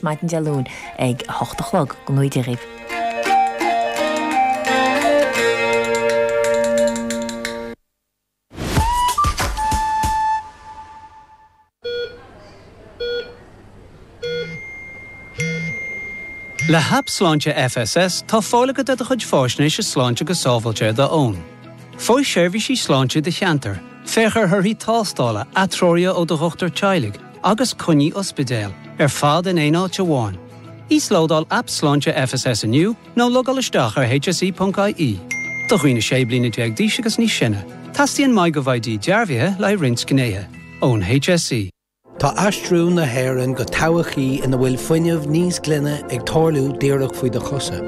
maidin Dé Luain ag a hocht a chlog. Go nuige dhíbh. Le hAip Sláinte FSS tá fáil agat ar do chuid fáisnéise sláinte go sábháilte ar d'fhón. Faigh seirbhísí sláinte i do cheantar, féach ar thorthaí tástála, atreoruithe ó do dhochtúir teaghlaigh, agus coinní ospidéil, ar fad in aon áit amháin. Íoslódáil Aip Sláinte FSS inniu nó logáil isteach ar hse.ie. Do dhaoine 16 bliana d'aois agus níos sine, teastaíonn MyGov ID dearbhaithe le haghaidh roinnt gnéithe. Ón HSE. Tá aistriú na hÉireann go todhchaí ina bhfuil fuinneamh níos glaine ag tarlú díreach faoi do chosa.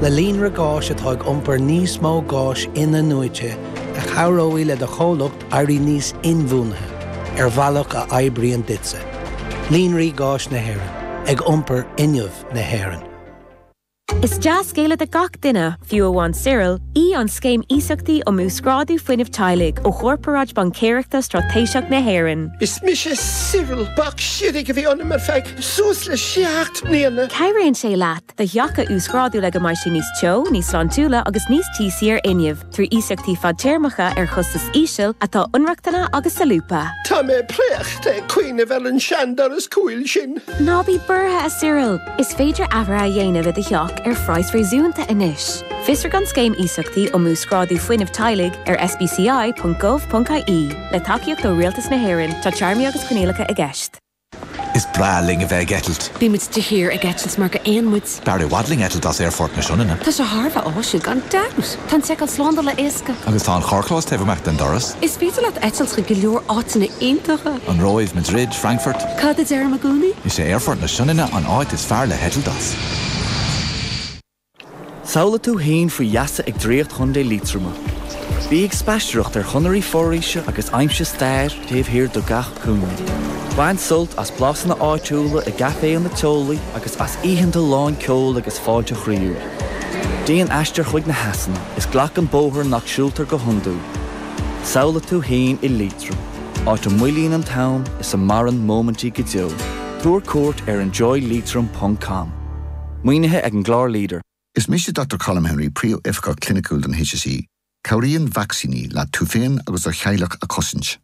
Le líonra gáis atá ag iompar níos mó gáis in-athnuaite a chabhróidh le do chomhlacht éirí níos inbhuanaithe ar bhealach a oibríonn duitse, Líonraí Gáis na hÉireann, ag iompar fhuinneamh na hÉireann. Is dea-scéala do gach duine, fiú amháin Cyril, í an Scéim Iasachtaí um Uasghrádú Fuinnimh Teaghlaigh ó Chorparáid Baincéireachta Straitéiseach na hÉireann. Is mise Cyril, bac siorraidh a bhí ionam ar feadh suas le seacht mbliana. Cabhraíonn sé leat do theach a uasghrádú le go mbeidh sé níos teo, níos sláintiúla agus níos tíosaí ar fhuinneamh. trí iasachtaí fadtéarmacha ar chostas íseal atá inrochtana agus solúbtha. Tá mé préachta ag cuimhneamh ar an seandoras cúil sin. Ná bí buartha, a Cyril! Is féidir athruithe a dhéanamh i do theach ar phraghas réasúnta anois. Fiosraigh an Scéim Iasachtaí um Uasghrádú Fuinnimh Teaghlaigh ar sbci.gov.ie. Le tacaíocht ó Rialtas na hÉireann, tá téarmaí agus coinníollacha i gceist. Is breá linn a bheith ag eitilt. Bíonn muid de shíor ag eitilt mar gur éin muid. B'fhearr i bhfad linn eitilt as Aerfort na Sionainne. Tá sé thar a bheith áisiúil, gan dabht! Tá an tseiceáil slándála éasca. Agus tá an carrchlós taobh amach den doras. Is féidir leat eitilt chuig go leor áiteanna iontacha. An Róimh, Madrid, Frankfurt. Cad a deirim i gcónaí? Is é Aerfort na Sionainne an áit is fearr le heitilt as. Samhlaigh tú fhéin faoi gheasa ag draíocht Chontae Liatroma. Bí ag spaistearacht ar chonairí foraoise agus aimsigh stair taobh thiar de gach cúinne. Bain sult as blasanna áitiúla i gcaiféanna teolaí agus as oícheanta lán ceoil agus fáilte chroíúil. Déan aistear chuig na heasanna is glac an bóthar nach siúltar go hiondúil. Samhlaigh tú fhéin i Liatroim, áit a moillíonn an t-am is a maireann móimintí go deo. Tabhair cuairt ar enjoyleitrim.com. Maoinithe ag an gclár LEADER. Is mise Dr Colm Henry, Príomhoifigeach Cliniciúil don HSE. Cabhraíonn vacsaíní leat tú féin agus do theaghlach a chosaint.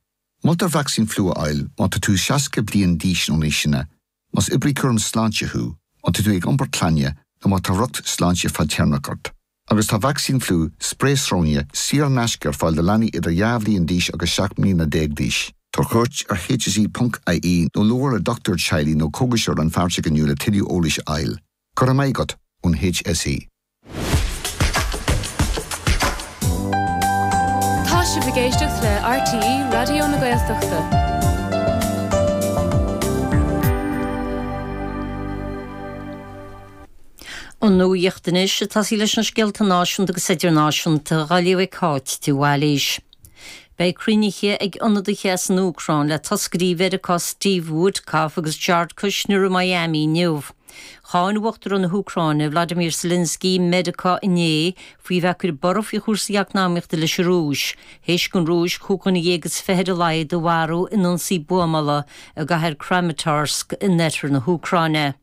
Moltar vacsaín fliú a fháil má tá tú 60 bliain d'aois nó níos sine, más oibrí cúram sláinte thú, má tá tú ag iompar clainne nó má tá riocht sláinte fadtéarmach ort. Agus tá vacsaín fliú, sprae sróine, saor in aisce ar fáil do leanaí idir dhá bhliain d'aois agus seacht mbliana déag d'aois. Tabhair cuairt ar hse ponc ie nó labhair le dochtúir teaghlaigh nó cógaiseoir rannpháirteach inniu le tuilleadh eolais a fháil. Go raibh maith agat ón hse. Tá sibh ag éisteacht le RTÉ Raidió na Gaeltachta. An nuacht anois ag tosaí leis na scéalta náisiúnta agus idirnáisiúnta dá léamh ag Cáit de Bhailís. Beidh cruinnithe ag ionadaithe as an Úcráin le toscairí Mheiriceá Steve Witkoff agus Jared Kushner i Miami inniu. Cháin Uachtarán na hÚcráine, Vladimir Zelensky, Meiriceá inné faoi bheith ag cur borradh faoi chúrsaí eacnamaíochta leis an Rúis, théis don Rúis chúig dhuine dhéag is fiche ar a laghad a mharú in ionsaí buamála i gcathair Kramatorsk in oirthear na hÚcráine.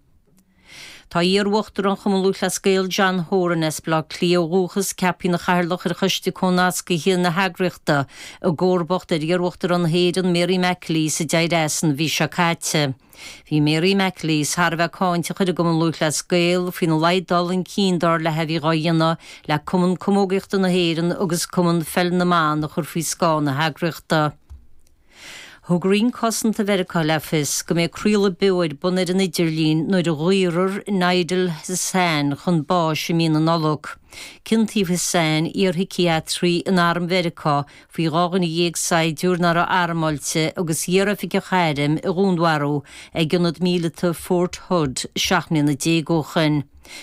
Tá iar-uachtarán Chumann Lúthchleas Gael, John Horan as Baile Átha Cliath ó dhúchas, ceapthaí ina chathaoirleach ar Choiste Comhnasctha na heagraíochta, i gcomharbacht ar iar-uachtarán na hÉireann, Mary McAleese, a d'éirigh as an mhí seo caite. Bhí Mary McAleese thar a bheith cáinteach ar an gCumann Lúthchleas Gael faoina laghad dul chun cinn dar léi a bhí dhá dhéanamh le Cumann Camógaíochta na hÉireann agus Cumann Pheil na mBan a chur faoi scáth na heagraíochta. Thug roinn cosanta Mheiriceá le fios go mbeidh craoladh beo ar bun ar an idirlíon nuair a dhaorfar Nidal Hasan chun báis i mí na Nollag. Ciontaíodh Hasan, iarshiciatraí in Arm Mheiriceá, faoi dhá dhuine dhéag saighdiúir nach raibh armáilte agus iar-oifigeach airm a dhúnmharú ag ionad míleata Fort Hood seacht mbliana déag ó shoin.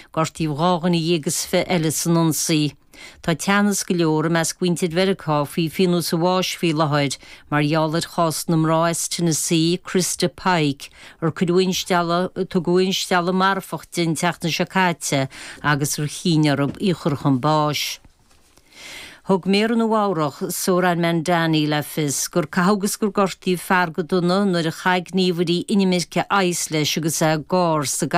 Gortaíodh dhá dhuine dhéag is fiche eile san ionsaí. Tá teannas go leor i measc mhuintir Mheiriceá faoi phionós an bháis faoi láthair mar gheall ar chás na mná as Tennessee, Christa Pike, ar cuireadh instealladh, tugadh instealladh marfach di an tseachtain seo caite agus ar chinn orthu í a chur chun báis. Thug Méara Nua-Eabhrac, Zohran Mamdani, le fios gur caitheadh agus gur gortaíodh fear go dona nuair a chaith gníomhairí inimirce ICE leis agus é ag gáir sa